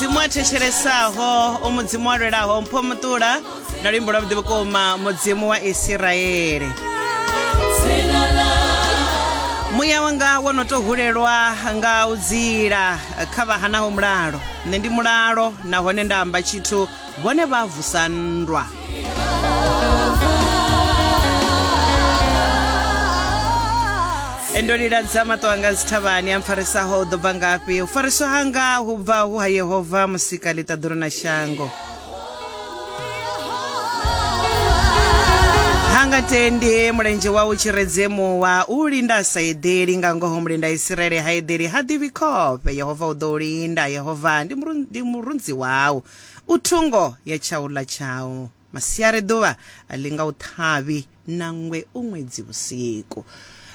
mudzimu a thetshelessaho u mudzimu wa lwelaho mpho muṱula na luimbo lwa vhuḓi vhukuma mudzimu wa isiraele muya wanga wo no tou hulelwa nga u dzila kha vha hanaho mulalo nṋe ndi mulalo nahone nda amba tshithu vhone vha vusa nndwa ndo liladza maṱo anga dzithavhani a mpfarisaho u ḓo bva ngafhi u fariswa hanga hu bva hu ha yehova musika ḽiṱaḓulu na shango hanga tendi mulenzhe wawu tshiredzimu wa u linda a sa eḓeli nga ngoho mulenda isiraele ha eḓeli ha ḓivhi khofhe yehova u ḓo u linda yehova ndi murunzi wawu U thungo ya tshaula tshau. Masiari ḓuvha a linga u ṱhavhi, nangwe u ṅwedzi vhusiku.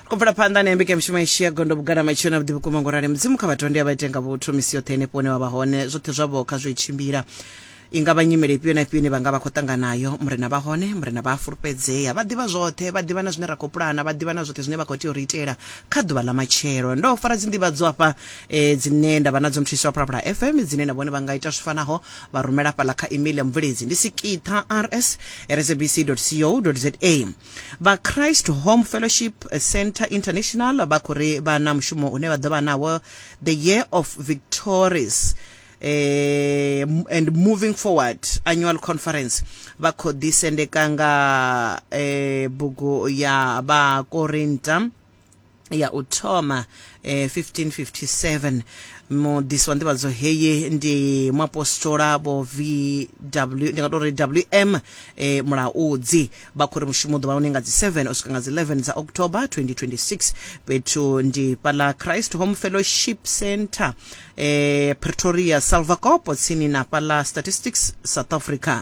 Ri khou bvela phanḓa na mbekanyamishumo yashu ya gondo vhugala matshilo na vhuḓi vhukuma ngo rali mudzimu kha vhathu vha ndi a vha ite nga vhuthu misi yoṱhe henefho hune wa vha hone zwoṱhe zwavho kha zwi tshimbila i nga vha nyimele ifhio na ifhio ine vha nga vha khou ṱanganayo murena vha hone murena vha a fulufhedzea vha ḓivha zwoṱhe vha ḓivha na zwine ra khou pulana vha ḓivha na zwoṱhe zwine vha khou tea u ri itela kha ḓuvha ḽa matshelo ndo fara dzi nḓivhadzo afha e, dzine nda vha nadzo muthiso wa phalaphala fm dzine na vhone vha nga ita zwi fanaho vha rumela fhaḽa kha email ya mubveledzi ndi sikitha rs rsabc co za vha christ home fellowship center international vha khou ri vha na mushumo une vha ḓo vha nawo the year of victories eh, m- and moving forward annual conference vha khou ḓisendeka nga eh, bugu ya vhakorinta ya u thoma eh, 1557 mudisi wa nḓivhadzo heyi ndi muapostola vho vw ndi nga tou ri wm eh, mulaudzi vha khou ri mushumo u ḓo vha hone nga dzi 7 u swika nga dzi 11 dza october 2026 fhethu ndi fhaḽa christ home fellowship center eh, pretoria salvacopo tsini na fhaḽa statistics south africa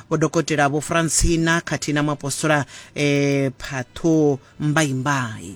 vho dokotela vho francina khathihi na muapostola eh, phatho mbaimbai